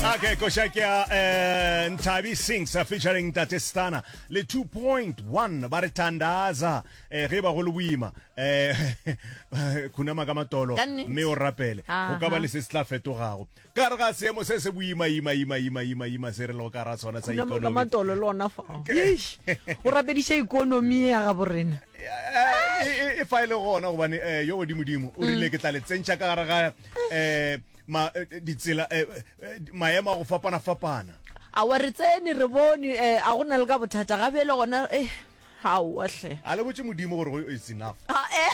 Okay, koša ke a eh, Nthabi Sings uh, featuring Tate Stana le 2.1 ba re thandaza eh, ge ba go le boima eh, khunama ka matolo Ka nnete. mme o rapele Aha. go ka ba le se se tla fetogago ka re ga seemo se se boima ima ima ima ima ima se re lego ka ra sona sa Khunama ka ikonomi matolo le ona fa Eish, o rapediša ikonomi ya gabo rena Eh, e- e- e fa e le gona gobane eh, yo godimodimo o rile ke tla le tsentšha ka gare ga eh, ma, eh, ditsela eh, eh, maemo a go fapana-fapana awa re tsene re bone eh, a go na le ka bothata gabe le gona eh, aowa hle a le botse modimo gore go it's enough Ah, eh.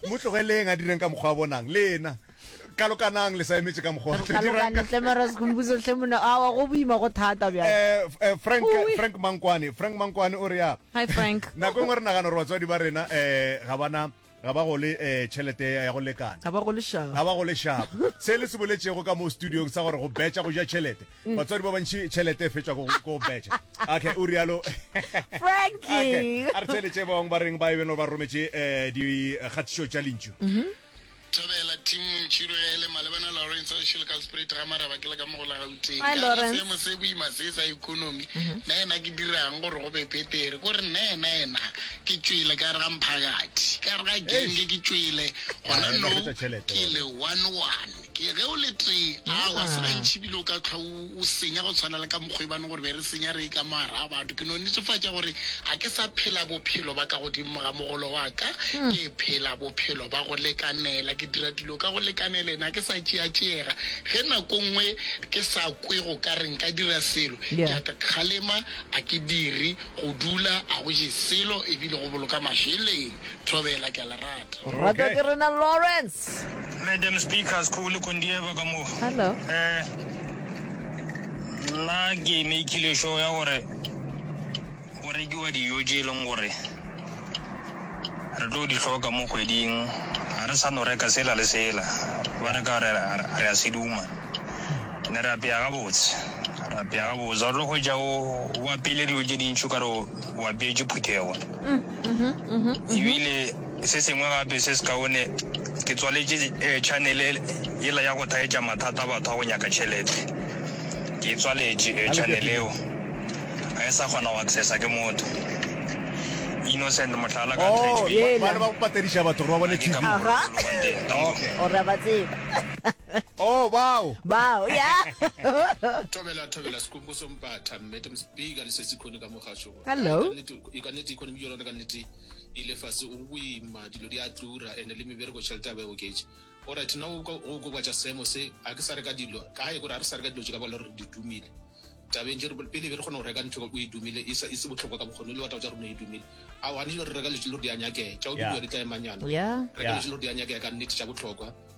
mo tlogeleng a direng ka mokgwa a bonang le ena kalokanang le sa emetse ka mokgwa a tla dirang ka- tlemaresgombusotlhe mona awa go boima go thata bjang Eh, f- eh, frank Ui. frank mankwane frank mankwane o re ya hi frank nako e nngwe re nagana gore batswadi ba rena um ga bana Ga ba gole eh, tšhelete ya go lekana. ga ba go lešago ga ba go lešago se le se boletšego ka mo studiong sa gore go betša go ja tšhelete Mm. batswadi ba bantši tšhelete e fetšwa go go betša okay o rialo frankie a re theletše ba bangwe ba reng ba e beno ba rometše um dikgatišo tša lentšu thabela tim ntšhirogele malebana lawrence wa šele ka sprate ga maraba ke le ka mo go la gauteng Hi, Lawrence. seemo se boima se sa economy nna ena ke dirang gore go be petere ko re nna ena ena Ke tšwele ka gare ga mphakathi, ka gare ga genge ke tšwele, gona no ke le one-one. Ke ge o le tee, aowa, se gantši bile o ka hlwa o, o senya go tshwana le ka mokgwa e bane gore be re senya re e ka mo gare ga batho. Ke no netefatša gore ga ke sa phela bophelo ba ka godimo ga mogolo wa ka, ke phela bophelo ba go lekanela. Ke dira dilo ka go lekanelena, ga ke sa tšeatšeega. Ge nako nngwe ke sa kwe go ka re nka dira selo, ke a kgalema, ga ke dire. Go dula a go je selo e bile go boloka mašeleng. Thobela, ke a le rata. Go ratwa ke rena Lawrence. Madam Speaker, Skhou le Kondieva ka mo. Hello. Eh, nna ke makeile show ya gore go rekiwa dijo tše e leng gore re tlo di hloka mo kgweding. Ga re sa no reka sela le sela, ba reka re a seduma. ne re apea gabotse re apea gabotse ga tlo hwetša o apeile dilo tše dintšhi ka re o apeetše phuthego mm, mm-hmm, mm-hmm, mm-hmm. ebile se sengwe gape se se kaone ke tswaletše eh, channel e, ela ya go thaetša mathata a batho a go nyaka tšhelete ke e tswaletše eh, channel eo ga e sa kgona go accessa ke motho innocent motlhala ka oh, ba patediša batho gore ba bone tv ora ba tseba Oh, bao! Bao, ya. Thobela, thobela, sekumbu so mpatha, mmete mspeaker, le sesi khone ka mogasho. Hello. I ka nete, economy yona ka nete, ile fase, o boima, dilo di a tura, ene le mebereko tšhelete ya ba e oketše. All right, now o gobatša seemo se, a ke sa reka dilo, kae gore a re sa reka dilo tše ka bala gore di dumile. Tabeng tše re pele be re kgona go reka ntho o e dumile, e se botlhokwa ka bokgone, le wa taba tša rona e dumile. A o gane dilo re reka dilo tše le gore di a nyakega, tša o dumile di tla emanyana. Reka dilo tše le gore di a nyakega ka nete tša botlhokwa.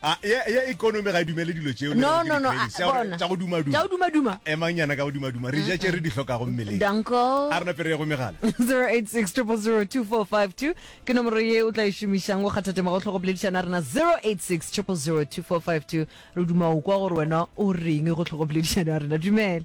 A, ye, ye economy ga e dumele dilo tšeo le No, gore ke no, no, di-cravings, a- tša gore- bona. tša go dumaduma. Tša go dumaduma. A, emang nyana ka go dumaduma re ja tše re di hlokago mmeleng Danko. a re napere ye go megala 086 000 2452 ke nomoro ye o tla e šomišang go kgatha tema go tlhogo boledišana rena 086 000 2452 re duma o kwa gore wena o reng go tlhogo boledišana rena dumela